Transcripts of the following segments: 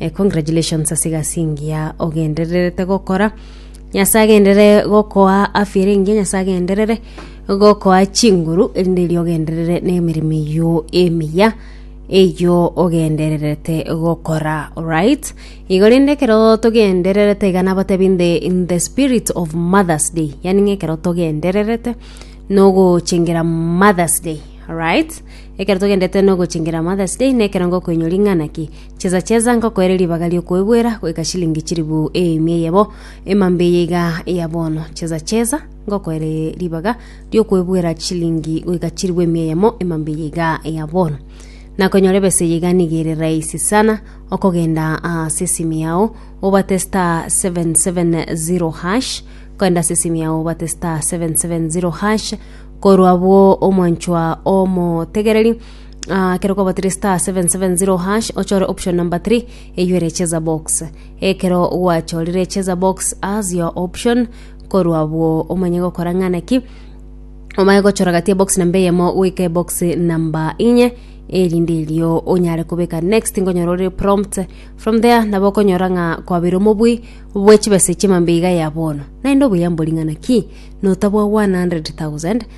Eh, congratulations ase egasi engiya ogendererete gokora nyasaye agendere gokoa afya ere engiya nyasaye agenderere gokoa chinguru erinde erio ogenderere nemeremo eyio emiya eyio ogendererete gokora right igo rende ekero togendererete iga nabatebi nde in the spirit of mothers day yaani ng'a ekero togendererete nogochengera mothers day right ekero togendererete nogochengera mothers day nekero ngokoinyora ing'ana ki Chesa chesa ngokoere ribaga ri'okoebwera goika chilingi chilifu eemia eyebo emambe eye iga ya bono. Chesa chesa ngokoere ribaga ri'okoebwera chilingi goika chilifu emia eyemo emambe eye iga ya bono. Nakonyora ebesa eye iga niga ere rahisi sana okogenda ase esimi yao obate star 770 hash kogenda ase esimi yao obate star 770 hash korwa abwo omwanchwa omotegereri Ekero okobatire star 770 hash ochore option number 3 eywo ere cheza box ekero gwachorire cheza box as your option korwa abwo omanye gokora ng'ana ki omanye gochora gati ebox namba eyemo goika ebox namba inye erinde erio onyare kobeka next ngonyora ore prompt from there nabo okonyora ng'a kwabeire omobui bwe chibesa chimambe iga ya bono naende obuya mbori ng'ana ki notabwa 100000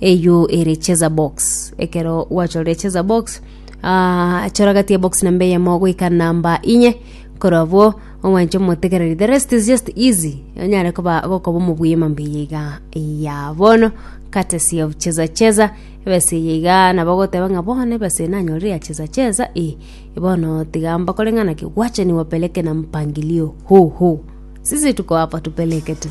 Eyio ere cheza box. Ekero gwachorire cheza box, ah, chora gati ya box namba eyemo goika namba inye. Korwa abwo, omwanche omotegereri. The rest is just easy. Onyare koba gokoba omobuya mambia iga ya bono. Courtesy of cheza cheza. Ebese eye iga nabo goteba ng'a bono ebese eye nanyorire ya cheza cheza. Eh, bono tiga mbakore ng'ana ki, wacha niwapeleke na mpangilio huu huu. Sisi tuko hapa tupeleke tu.